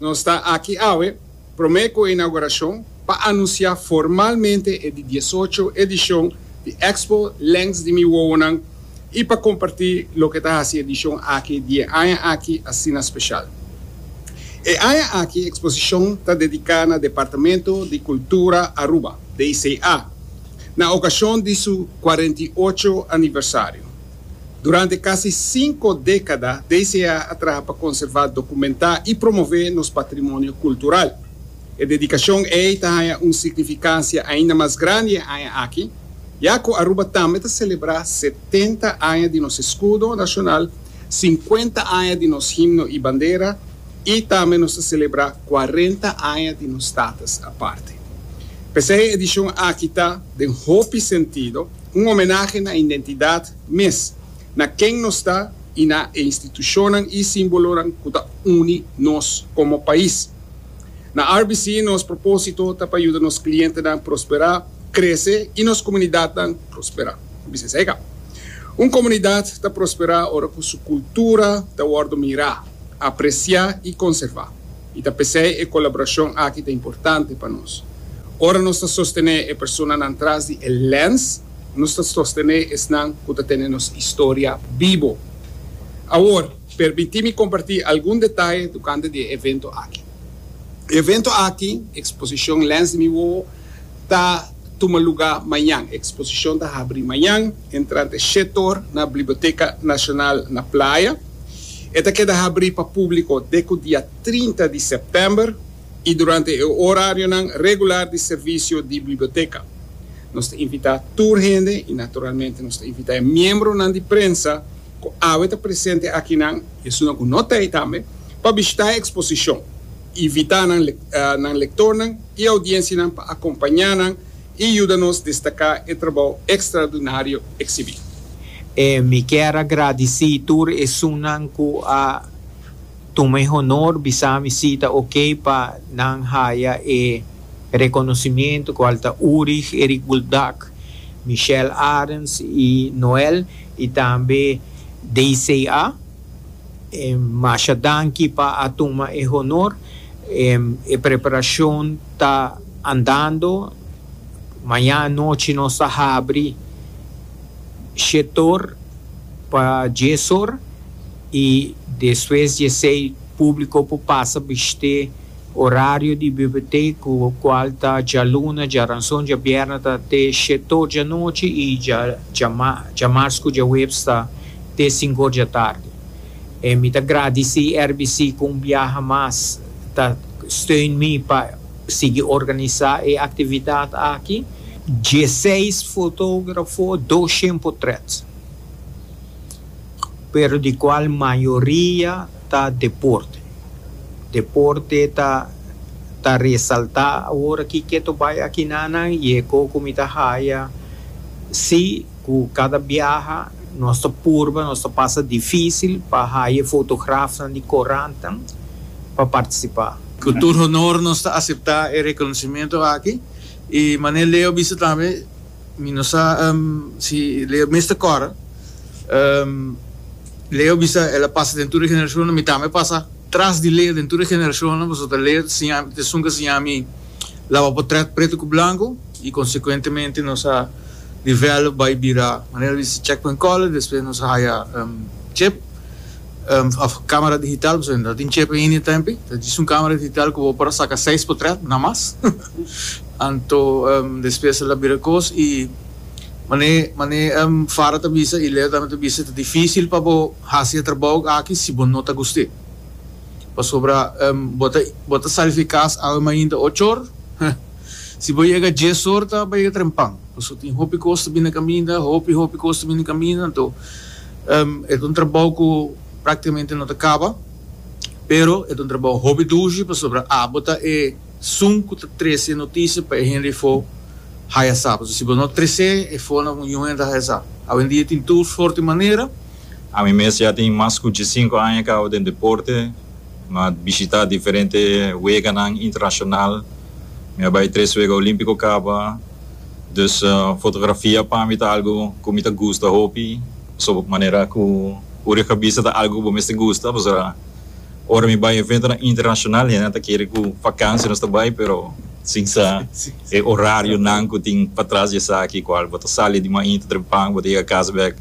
Nos ta aki awe promé ku e inaugurashon pa anunsiá formalmente e di diesocho edishon di Expo Lèns di Mi Wowonan i pa kompartí loke ta hasi edishon aki di e aña aki asina speshal. E aña aki eksposishon ta dediká na Departamento di Kultura Aruba, DCA, na okashon di su kuarenta i ocho aniversario. Durante casi cinco decada, DCA a traha pa conserva, documenta y promove nos patrimonio cultural. E dedicacion ey ta haya un significancia ainda mas grandi e aña aki, ya cu Aruba tambe ta celebra setenta aña di nos escudo nacional, cincuenta aña di nos himno y bandera y tambe nos ta celebra cuarenta aña di nos status aparte. P'esey e edicion aki ta, den hopi sentido, un homenahe na identidad mes, na ken nos ta y na e institucionnan y simbolonan cu ta uni nos como pais. Na RBC nos proposito ta pa yuda nos clientenan prospera, crece y nos comunidadnan prospera. Bisa esei ka. Un comunidad ta prospera ora cu su cultura ta wordo mira, aprecia y conserva. I ta p'esei e kolaborashon aki ta importante pa nos. Ora nos ta sostené e personanan tras di e lèns, nos ta sostené esnan ku ta tene nos historia bibo. Awor, permití mi kompartí algun detaye tokante di e evento aki. E evento aki, Eksposishon Lèns di mi Wowo, ta. tuma lugá mañan. E eksposishon ta habri mañan entrante shet or na Bliboteka Nashonal na Playa. E ta keda habri pa públiko dek ku dia trinta di sèptèmber i durante e orarionan regular di servisio di Bliboteka. Nos ta invitá tur hende i naturalmente nos ta invitá e miembronan di prensa ku awe ta presente akinan, i esunnan ku no ta ei tambe, pa bishitá e eksposishon. Invitá nan nan lektornan i audiensianan pa akompañá nan i yuda nos destaká e trabou ekstraordinario eksibí. Mi kier a gradisí tur esunnan ku a tuma e honor bisami si ta okey pa nan haya e rekonosimiento ku al ta Urig, Erik Buldak, Michelle Arends i Noel i tambe DCA. Masha danki pa a tuma e honor. E preparashon ta andando. Maña anochi nos ta habri shetor pa diesorr i despues diesei publico por pasa bishte horario di bibliotek cu cual ta djaluna, djaranson, djabierna ta te shetor djanochi i dja djamars cu djahuebs ta te sinku or dja tardi. E mi ta gradisí RBC ku un biaha mas ta steun mi pa sigui organisá e aktividat aki. Dieseis fotógrafo, doshen potrèt, pero di kual mayoria ta deporte. Deporte ta ta resaltá awor aki keto bai aki na nan i e ko ku mi ta haya si. Ku kada biaha nos ta purba, nos ta pasa difísil pa haya e fotografnan di korantan pa partisipá. Ku tur honor nos ta aseptá e rekonosementu aki. I manera Leo bisa tambe, mi no sa si Leo mes ta kòrda, Leo bisa el a pasa den tur e generashonnan, mi tambe a pasa tras di Leo den tur e generashonnan, pasobra Leo ta siña mi, ta esun ku a siña mi laba potrèt pretu ku blanku. I konsekuentemente nos a develop bai bira manera di hasi checkpoint caller, despues nos a haya chip of camera digital, pasobra no ta tin chip ainda e tempo, ta djis un camera digital ku bo por a saka seis potret na mas, anto despues a la bira kos i mane mane Farah ta bisa i Leo tambe ta bisa ta dificil pa bo hasi e trabou aki si bo no ta guste, pasobra bo ta bo ta sali fi e cas awe mainta ocho or. Si bo yega dies or ta bo yega trempan, pasobra tin hopi cos ta bini caminda, hopi hopi cos ta bini caminda, anto e ta un trabao cu practicamente no ta caba, pero e ta un trabao hopi dushi, pasobra abo ta e sun cu ta trece e noticia pa e hende efo haya sa, pasobra si bo no trece efo na un hende haya sa, awendia tin tur sorti manera. Ami mes ya tin mas cu dicisinco aña cabo den deporte, Mi a bishita diferente weganan internashonal. Mi a bai tres wega olímpiko kaba. Dus fotografia pa mi ta algu ku mi ta gusta hopi. Pasobra ku manera ku uri e kabisa ta algu ku bo mester gusta. Pasobra ora mi bai eventonan internashonal hende nan ta kere ku vakansia nos ta bai pero sin sa e orarionan ku tin patras di esaki kual bo ta sali di mainta trempan bo ta yega kas bèk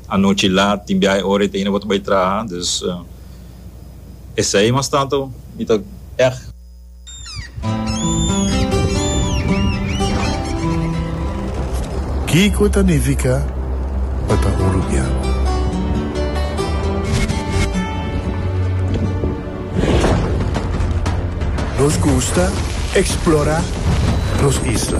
anochi lat tin biaha e ora i ta hina bo ta bai traha. Dus. Esei mas tantu mi ta èg. Kiko ta nifiká pa ta un rubian? Nos gusta eksplorá nos isla.